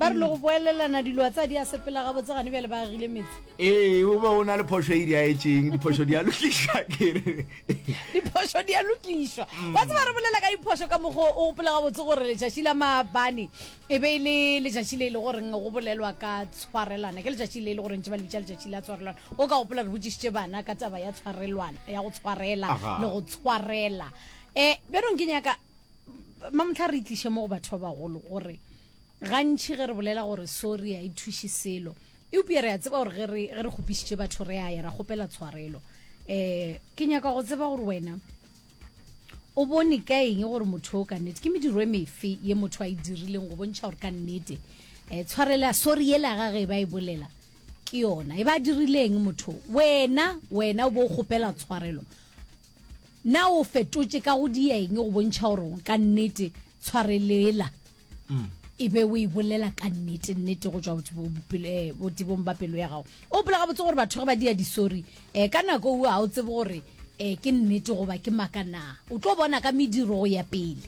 ba re le go boelelana dilo a tsa di a sepela gabotse gane bjale ba agile metse ee o be o na le phoso e di a etseng diphoso di a lokišwa kere diphoso di a lokišwa mm. ba tseba re bolela ka diphoso ka mogo o gopola gabotse gore letšatši la maabane e be e le letšatši le e le goreng go bolelwa ka tshwarelwana ke letšatši le e le goreng tse ba le bitša letšatši la tshwarelwana o ka gopola re botsišitše bana ka taba ya tshwarelwana ya go tshwarela le go tshwarela um bjanong ke nyaka mamotlha re itliše mo go batho ba bagolo gore Gantši ge re bolela gore sori ga e thuše selo, eupša re a tseba gore ge re, ge re kgopišitše batho re a ya ra kgopela tshwarelo. Um ke nyaka go tseba gore wena o bone ka eng gore motho o ka nnete, ke mediro e mefe ye motho a e dirileng go bontšha gore ka nnete um tshwarela sori yela ya gage e ba e bolela ke yona e ba dirileng motho wena wena o bo o kgopela tshwarelo Na o fetotše ka go dieng go bontšha gore o ka nnete tshwarelela mm. e be o e bolela ka nnete nnete go tswa eh, botibong ba pelo ya gago o pela gabotse gore batho ge ba dia disori um ka nako o ga o tsebe gore um ke nnete goba ke maka na o tlo bona ka mediro go ya pele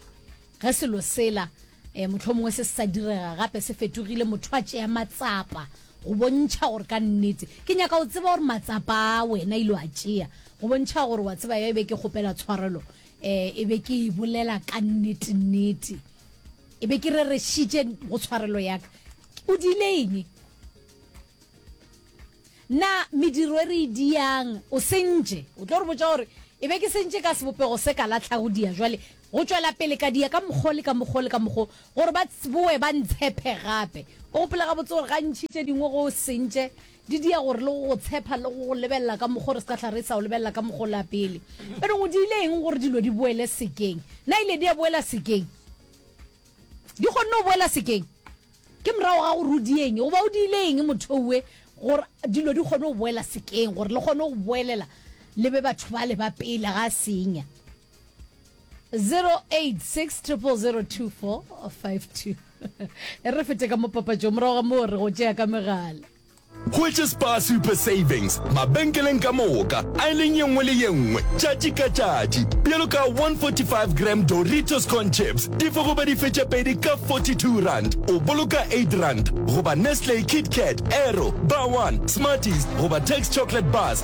Ge selo sela, e, mohlomongwe se se sa direga gape, se fetogile, motho a tšea matsapa go bontšha gore ka nnete, ke nyaka go tseba gore matsapa a wena ile wa tšea go bontšha gore wa tseba ya e be ke kgopela tshwarelo, e, e be ke e bolela ka nnete-nnete, e be ke rerešitše go tshwarelo ya ka. O diile eng? Na mediro e re e diang o sentše? O tlo re botša gore e be ke sentše ka sebopego se ka latlhago dia, jwale Go tšwela pele ka dia ka mokgo le ka mokgo le ka mokgo, gore ba tsboe ba ntshephe gape. O gopola gabotse gore gantši tše dingwe go sentše di dia gore le go go tshepha le go go lebelela ka mokgo re se ka hla re sa o lebelela ka mokgo la pele. Pero go diile eng gore dilo di boele sekeng? Na ile dia boela sekeng? Di kgonne go boela sekeng? Ke morago ga gore o dieng goba o diile eng mothoue gore dilo di kgone go boela sekeng gore le kgone go boelela le be batho bale ba pele ga senya? 0860002452 e re fete ka mo papatšong morago ga moo re go tšea ka megala which is Spar Super Savings mabenkeleng ka moka a e leng ye nngwe le ye nngwe tšatši ka tšatši bjalo ka 145 gram Doritos corn chips di fo goba dife tše pedi ka 42 rand o boloka 8 rand goba Nestle Kit Kat Aero Bar One Smarties goba Tex Chocolate Bars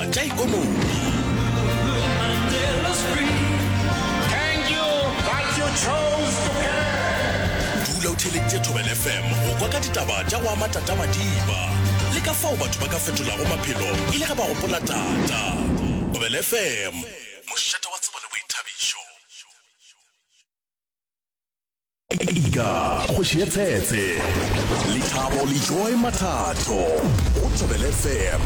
tša ikonomi. Dula o theeleditše Thobela FM go kwa ka ditaba tša go ama tatamadiba le ka fao batho ba ka fetolago maphelo e le ge ba gopola tata. Thobela FM, mošate wa tsebo le boithabišo. Ika, kgoši ye tshetse. Lethabo le Joy Mathato go Thobel FM.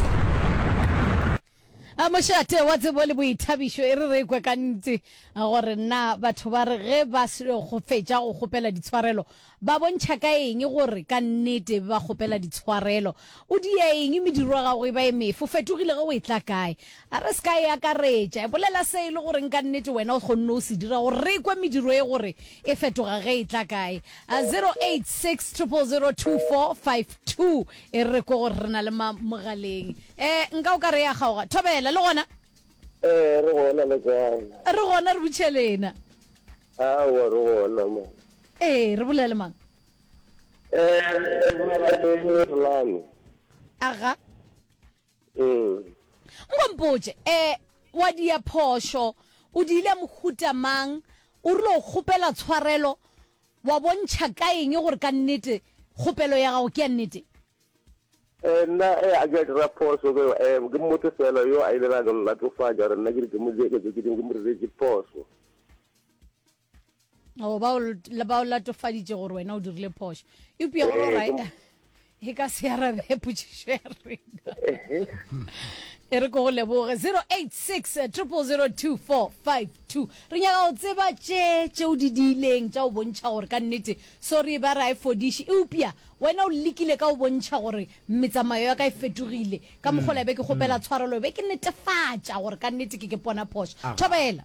A mošate wa tsebo le boithabišo e re re kwe ka ntse gore na batho ba re ge ba go fetša go kgopela ditshwarelo ba bontšha ka eng gore ka nnete ba kgopela ditshwarelo. O dia eng mediro ya gago e ba e mefe? O fetogile ge o etla kae? A re se ka e akaretša. Bolela se e le goreng ka nnete wena o kgonne go se dira gore re kwe mediro e gore e fetoga ge e tla kae. 0860002452 e re kwe gore re na le mang mogaleng. Eh, nka o ka re e a kgaoga. Thobela, le gona? Eh, re gona, le kae? Re gona, re butše le ena. Aowa, re gona mo. Eh, re bolela le mang? Eh, re bolela le Rulani. Aga. Ee. Nko mpotše, eh, wa dia phošo, o diile mohuta mang, o rile o kgopela tshwarelo, wa bontšha ka eng gore ka nnete kgopelo ya gago ke ya nnete? Eh, nna, eh, a ke a dira phošo, ke, eh, ke motho feela yo a ilego a no nlatofatša gore nna ke re ke mo dieketše tše dingwe, ke mo diretše phošo. o ba o latofaditše gore wena o dirile phošo eupša gore right e ka se arabe potšišo ya rena e re ko go leboge 086 002452 re nyaka go tseba tše tšeo di diileng tša go bontšha gore ka nnete sorry ba ra e fodiše eupša wena o lekile ka go bontšha gore metsamayo ya ka e fetogile ka mokgola be ke kgopela tshwarelo be ke netefatša gore ka nnete ke ke pona phošo thobela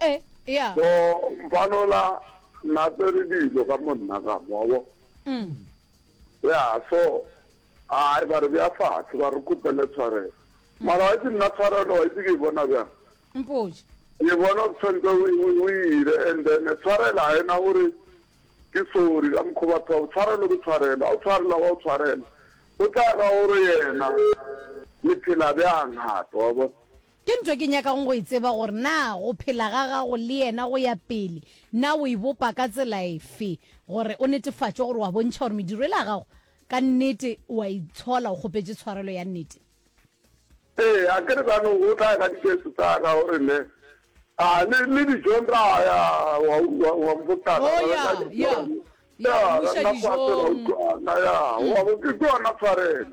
e ya so mfanola nna tsere dilo ka mo nna ka moabo mm. ya so ai ba re bja fatshe ba re kopele tshwarelo mm. mara wa itse nna tshwarelo wa itse ke e bona bjang mpoje ke bona o tshwanetse o ire and then tshwarela ga ena gore ke sori ka mokgwa batho bao tshwarelo ke tshwarelo a o tshwarela wa o tshwarela o tla ka gore yena le phela bjang gape wa bona Ke ntho ke nyakago go e tseba gore na go phela ga gago le Yena go ya pele, na o e bopa ka tsela efe gore o netefatše gore wa bontšha gore mediro yela ya gago ka nnete o a itshola o kgopetše tshwarelo ya nnete. Ee, a ke re bjalo o tla ela dikeso tsa ka o re ne, a le, le dijong ra ya, wa utlwa, wa mpotsa ka, Oh, ya, ya, ya, ya, ra nna fase ra utlwana, ya, wa bo, ke yona tshwarelo.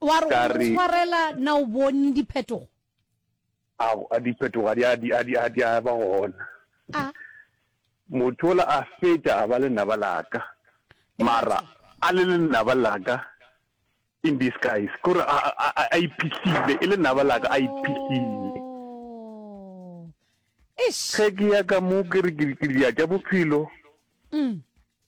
Wa re o mo tshwarela na o bone diphetogo? A diphetogo a di a ba gona. A motho ola a feta a ba lenaba laka mara a le lenaba laka in disguise kore a iphihlile e lenaba laka a iphihlile ge ke ya ka mo ke re ke ya tša bophelo mm.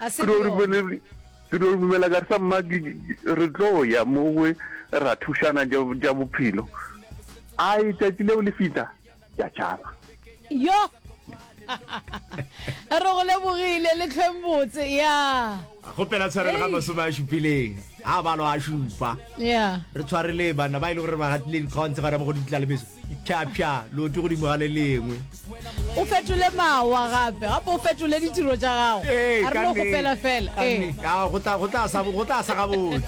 A se ke yone. Ke dio dumela ka sa mma re tlo ya mo we ra thušana ja bophelo. Ai tšatši leo le fita ya tšaba. Yo. Re go lebogile le tlhweng botse ya. Gopela tshwarelo ga masome a šupileng a balo a šupa re tshwarele banna ba e le gore ba gatile dikgaontse gare mo go ditla le meso phyaphya leoto godimo ga le lengwe O fetole mawa gape, gape o fetole ditiro tša gago. A re no kgopela fela. Go tla sa gabotse.